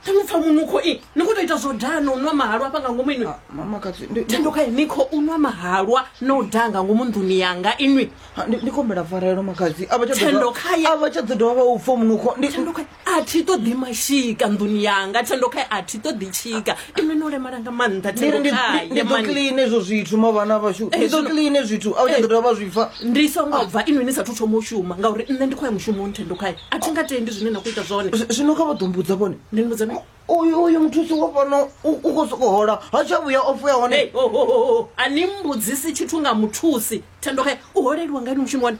Thando pfa munukho i ni khou tou ita zwo daha na u nwa mahalwa hafha nga ngomu inwi Ah, mama katsi ndi- ndi- thando khae ni khou nwa mahalwa na u daha nga ngomu nḓuni yanga inwi ah, ndi- ndi kombela pfarelo makadzi a vha tsha ḓo Thendo dovha- khaye. a vha tsha ḓo dovha vha u pfa munukho ndi thando khae a thi ṱoḓi mashika nḓuni yanga thando khae a thi ṱoḓi tshika ine no lemala nga maanḓa ndi ri ndi- ndi- ndi ḓo clean hezwo zwithu mavhana vhashu ndi ḓo clean hezwo zwithu a u tsha ḓo dovha vha zwi pfa ndi songo bva inwi ni sathu thoma u shuma ngauri nṋe ndi khoya mushumoni thendo khae a thi nga tendi zwine na khou ita zwone Zwi- zwino kha vha ḓo mbudza vhone ndi ni vhudza mini? uyu uyu muthusi wa fhano u u khou sokou hola ha tsha vhuya ofu ya Hey, hone oh, oh, oh, oh. a ni mbudzisi tshithu nga muthusi thendo khae u holeliwa nga ini mushumo wani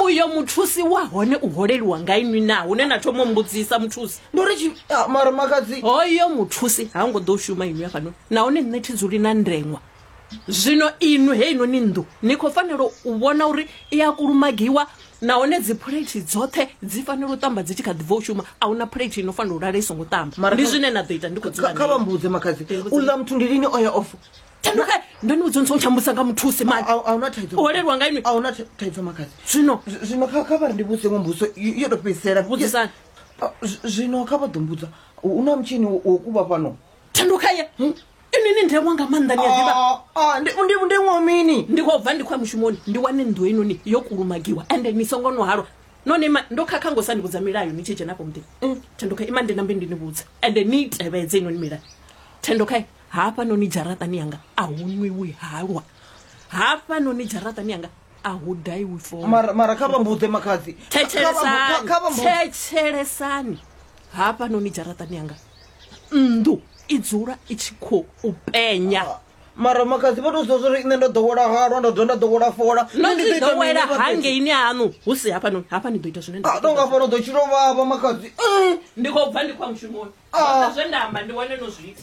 uyo muthusi wa hone u holeliwa nga inwi na hune na thoma mbudzisa muthusi ndori ah, mara makadzi hoyo muthusi ha ngo ḓo shuma inwi afhano nahone nṋe thi dzuli na ndengwa zwino inwi he inoni nnḓu ni khou fanela u vhona uri i a kulumagiwa nahone dzi phuleithi dzoṱhe dzi fanela u tamba dzi tshi kha ḓibva u shuma a huna phuleithi ino fanela u lala i songo tamba ndi zwine na ḓo ita ndi khou dzula kha vha mbudze makhadzi u ḽa muthu ndi lini o ya ofo ndo ni vhudza ntsongo tshambusa nga muthusi mani ahuna thaidzo holelwa nga inwi ahuna thaidzo makazi zwino zwino kha kha vhari ndi vhuse ngo mbuso yo to fhedzisela vhudzisani zwino kha vha ḓo mbudza u na mutshini wo kuvha fhano thanduka ye hmm? ini ni ndeṅwa nga maanḓa ni a ḓivha ah, ah, ndi ndeṅwa mini ndi khou bva ndi khou ya mushumoni ndi wane nnḓu inoni yo kulumagiwa ende ni songo no halwa none ima ndo khakha ngo sa ni vhudza milayo ni tshi dzhenafho muḓini mm. thanduka ima ndi nambe ndi ni vhudza ende ni tevhedze inoni milayo thanduka hafha noni dzharaṱani yanga a hu nwiwi halwa hafha noni dzharaṱani yanga a hu daiwi fo mara mara kha vhambuḓe makhadzi thetshelesani hafha noni dzharaṱani yanga nnḓu i dzula i tshi khou penya ah, mara makhadzi vha to zwa zwori nṋe ndo ḓowela halwa nda dovha nda ḓowela fola nodowela hangeini hanu hu si hafha noni hafha ni ḓo ita zwine nda ah, tonga fha no ḓo tshilo vhavha makhadzi eh. Ndi khou bva ndi khou ya mushumoni. Zwoṱhe zwe nda amba ndi hone no zwi ita.